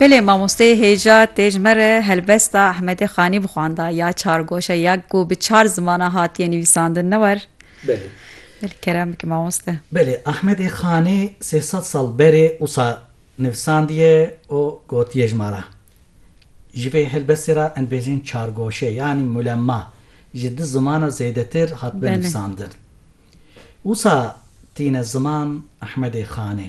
Belê mamosteyê hêja tê ji me re helbesta Ehmedê Xanî bixwanda ya çargoşe ya ku bi çar zimanan hatiye nivîsandin ne war? Belê. Belê kerem bike mamoste. Belê Ehmedê Xanî sê sed sal berê wisa nivisandiye û gotiye ji ma re. Ji vê helbestê re em dibêjin çargoşe yanî mulemma ji du zimana zêdetir hatibe nivîsandin. Wisa tîne ziman Ehmedê Xanê.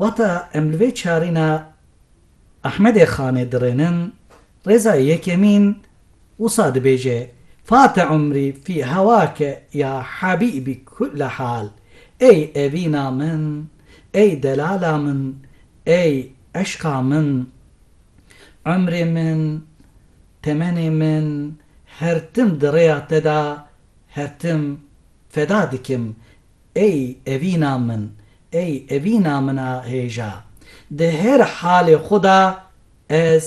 Wata em li vê çarîna Ehmedê Xanê dirênin, rêza yekemîn wisa dibêje, Fate umrî fî hewake ya hebîbî kulle hal, Ey evîna min, ey delala min, ey eşqa min, umrê min, temenê min, her tim di rêya te de, her tim feda dikim, Ey evîna min, ey evîna min a hêja, di her halê xwe de ez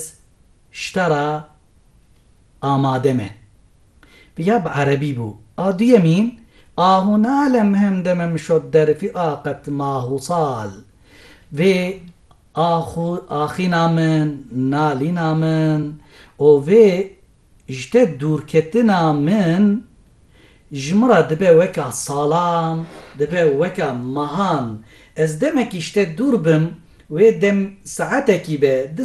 ji te re amade me. Viya bi erebî bû. A duyemî, Ahu nalem him demim şot derfî a qet mahu sal. Vê ahu axîna min, nalîna min û vê Ji te dûrketina min ji min re dibe weka salan, dibe weka mehan. Ez demekî ji te dûr bim, wê dem saetekî be, du